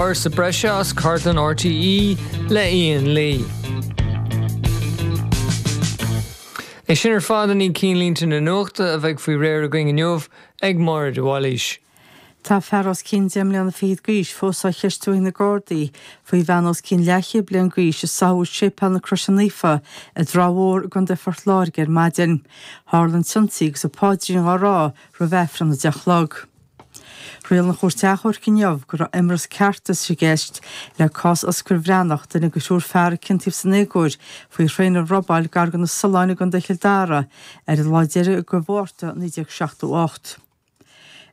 Ábhar breise as cartlann RTÉ le Ian Lee. É sin ar fad i ndiaidh chinnlínte na nuachta a bheidh faoi réir againn inniu ag Máire de Bhailís. Tá fear os cionn deich mbliana fichead d'aois fós á cheistiú ag na Gardaí faoi bhean os cionn leathchéad bliain d'aois a sáthadh i Séipéal na Croise Naofa i dTrá Mhór i gContae Phort Láirge ar maidin. Tharla an t-ionsaí agus a páidrín á rá roimh aifreann a deich a chlog. Riail an Chúirt Achomhairc inniu go raibh imreas ceartais i gceist le cás Osgur Breatnach, duine de thriúr fear a ciontaíodh san éagóir faoi thraein a robáil gar do na Solláin i gContae Chill Dara ar an lá deiridh de Mhárta 1978.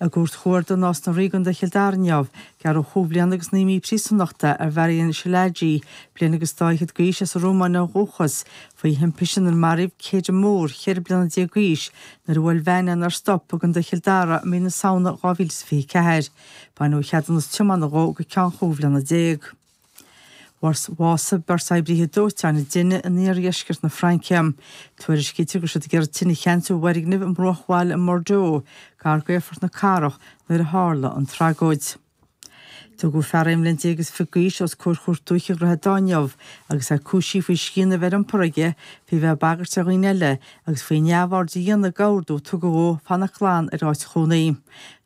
I gCúirt Chuarda Nás na Ríogh i gContae Chill Dara inniu, gearradh chúig bhliana agus naoi mí príosúnachta ar Mharian Szilágyi, bliain agus dá fhichead d'aois, as an Rómáin ó dhúchas, Faoi thimpiste inar maraíodh Kedagh Moore, cheithre bliana déag d'aois, nuair a bhuail veain é is nár stop i gContae Chill Dara i mí na Samhna 2024, baineadh ceadúnas tiomána dhó go ceann chúig bhliana déag. Básaíodh, beirt oibríthe dóiteáin inniu in iardheisceart na Fraince. Tuairiscítear go raibh siad ag iarraidh tine a cheansú i bhfoirgneamh i mbruachbhaile in Bordeaux, gar d'aerfort na cathrach, nuair a tharla an tragóid. Tugadh fear aon bhliain déag is fiche d'aois os comhair Chúirt Dúiche Dhroichead Átha inniu agus é cúisithe faoi scian a bheith ar iompar aige, faoi bheith ag bagairt ar dhaoine eile agus faoi neamhaird a dhéanamh d'ordú a tugadh dhó fanacht glan ar áit chónaí.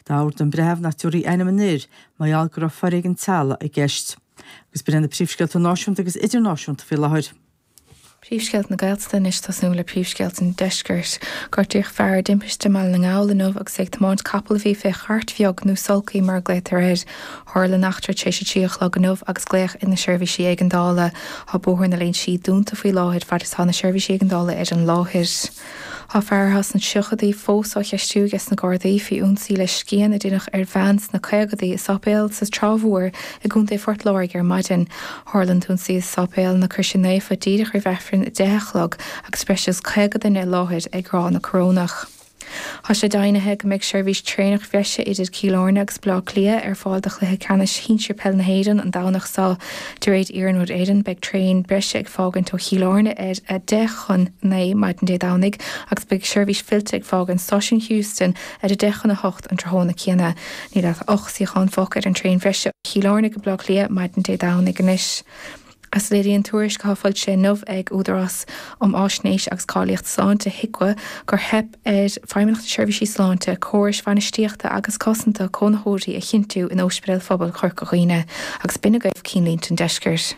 D'ordaigh an breitheamh nach dtiúrfaí ainm an fhir, mar gheall go raibh foréigean teaghlaigh i gceist. Agus b'in iad na príomhscéalta náisiúnta agus idirnáisiúnta faoi láthair. Príomhscéalta na Gaeltachta anois ag tosnú le príomhscéalta an deiscirt. Gortaíodh fear i dtimpiste i mBaile na nGall inniu agus é ag tiomáint capaill a bhí fé chairt bheag, nó sulky mar a ghlaotar air. Tharla an eachtra tar éis a trí a chlog inniu agus glaodh ar na seirbhísí éigeandála. Tá Bóthar na Lúinsí dúnta faoi láthair fad is atá na seirbhísí éigeandála ar an láthair. Tá fear as na tríochadaí fós á cheistiú ages na Gardaí faoi ionsaí le scian a deineadh ar bhean sna caogadaí i sáipéal sa Trá Mhór i gContae Phort Láirge ar maidin. Tharla an t-ionsaí i Sáipéal na Croise Naofa díreach roimh aifreann a deich a chlog agus breis agus caoga duine i láthair ag rá na Corónach. Tá sé deimhnithe go mbeidh seirbhís traenach bhreise idir Cill Airne agus Baile Átha Cliath ar fáil do chluiche ceannais shinsir peil na hÉireann an Domhnach seo. De réir Iarnród Éireann, beidh traein breise ag fágaint ó Chill Airne ar a deich chun naoi maidin Dé Domhnaigh agus beidh seirbhís fillte ag fágaint Stáisiún Heuston ar a deich chun a hocht an tráthnóna céanna. Níl ach ocht suíochán fágtha ar an traein bhreise ó Chill Airne go Baile Átha Cliath maidin Dé Domhnaigh anois, Léiríonn tuairisc atá foilsithe inniu ag Údarás um Fháisnéis agus Cáilíocht Sláinte, HIQA, gur theip. ar Fheidhmeannacht na Seirbhíse Sláinte córais bhainistíochta agus cosanta cónaitheoirí a chinntiú in Ospidéal Phobail Chorca Dhuibhne agus b'in agaibh cinnlínte an Deiscirt.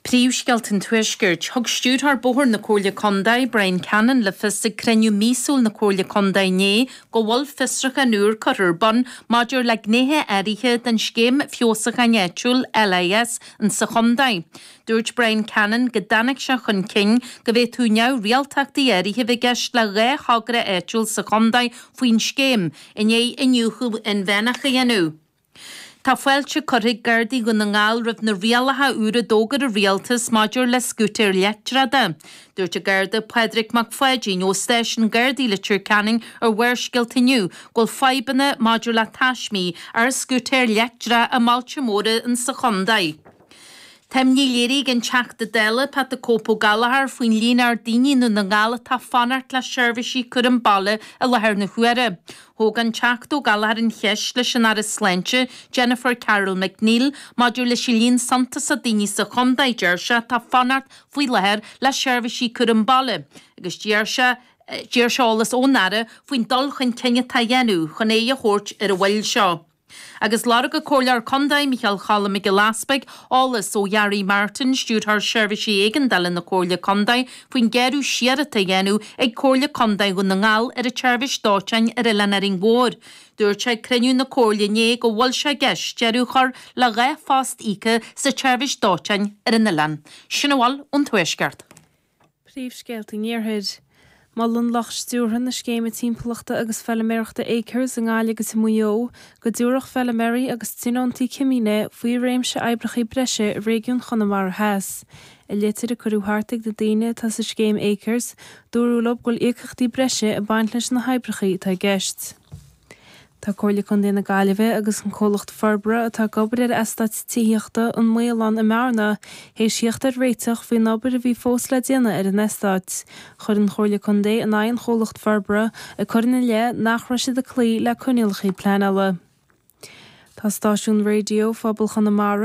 Príomhscéalta an Tuaiscirt, Thug Stiúrthóir Bóithre na Comhairle Contae, Bryan Cannon, le fios ag cruinniú míosúil na Comhairle Contae inné go bhfuil fiosrúchán úr curtha ar bun maidir le gnéithe áirithe den scéim feabhasúcháin áitiúil LIS in sa chontae. Dúirt Bryan Cannon go dtáinig sé chun cinn go bhféadfadh neamhrialtachtaí áirithe a bheith i gceist le dhá thogra áitiúil sa chontae faoin scéim i ndiaidh iniúchadh inmheánach a dhéanamh. Tá fáilte curtha ag Gardaí Dhún na nGall roimh na rialacha úra a d'fhógair an Rialtas maidir le scútair leictreacha. Dúirt an Garda Pádraig Mac Pháidín ó Stáisiún Gardaí Leitir Ceanainn ar Bharrscéalta inniu go bhfuil fadhbanna maidir le taismí ar scútair leictreacha i mbailte móra in sa chontae. Tá imní léirithe ag an Teachta Dála Pat 'The Cope' Ó Gallchóir faoin líon ard daoine i nDún na nGall atá ag fanacht le seirbhísí cúraim baile i láthair na huaire. Thóg an Teachta Ó Gallchóir an cheist leis an Aire Sláinte, Jennifer Carroll MacNeill, maidir leis an líon suntasach daoine sa chontae, a deir sé, atá ag fanacht faoi láthair le seirbhísí cúraim baile agus d'iarr sé eolas ón Aire faoin dul chun cinn atá á dhéanamh chun aghaidh a thabhairt ar an mhoill seo. Agus lorg an Comhairleoir Contae, Micheál Cholm Mac Giolla Easbuig, eolas ó Gharry Martin, Stiúrthóir Seirbhísí Éigeandála na Comhairle Contae, faoin ghearradh siar atá á dhéanamh ag Comhairle Contae Dhún na nGall ar an tseirbhís dóiteáin ar Oileán Árainn Mhór, dúirt sé ag cruinniú na Comhairle inné go bhfuil sé i gceist deireadh a chur le dhá phost íoca sa tseirbhís dóiteáin ar an oileán. Sin a bhfuil ón Tuaisceart. Príomhscéalta an Iarthair. Molann lucht stiúrtha na Scéime Timpeallachta agus Feilméarachta Acres i nGaillimh agus i Maigh Eo go dtabharfadh feilméaraí agus tionóntaí cimíne faoi réimse oibreachaí breise i réigiún Chonamara Theas. I litir a cuireadh thart ag na daoine atá sa scéim Acres, dúradh leo go bhfuil íocaíochtaí breise ag baint leis na hoibreachaí atá i gceist. Tá Comhairle Contae na Gaillimhe agus an Comhlacht Forbartha atá ag obair ar Eastát Tithíochta an Maoláin i mBearna théis thíocht ar réiteach faoin obair a bhí fós le déanamh ar an eastát. Chuir an Chomhairle Contae in aghaidh an chomhlachta forbartha ag cur ina leith nach raibh siad ag cloí le coinníollacha pleanála. Tá stáisiún raidió pobail Chonamara,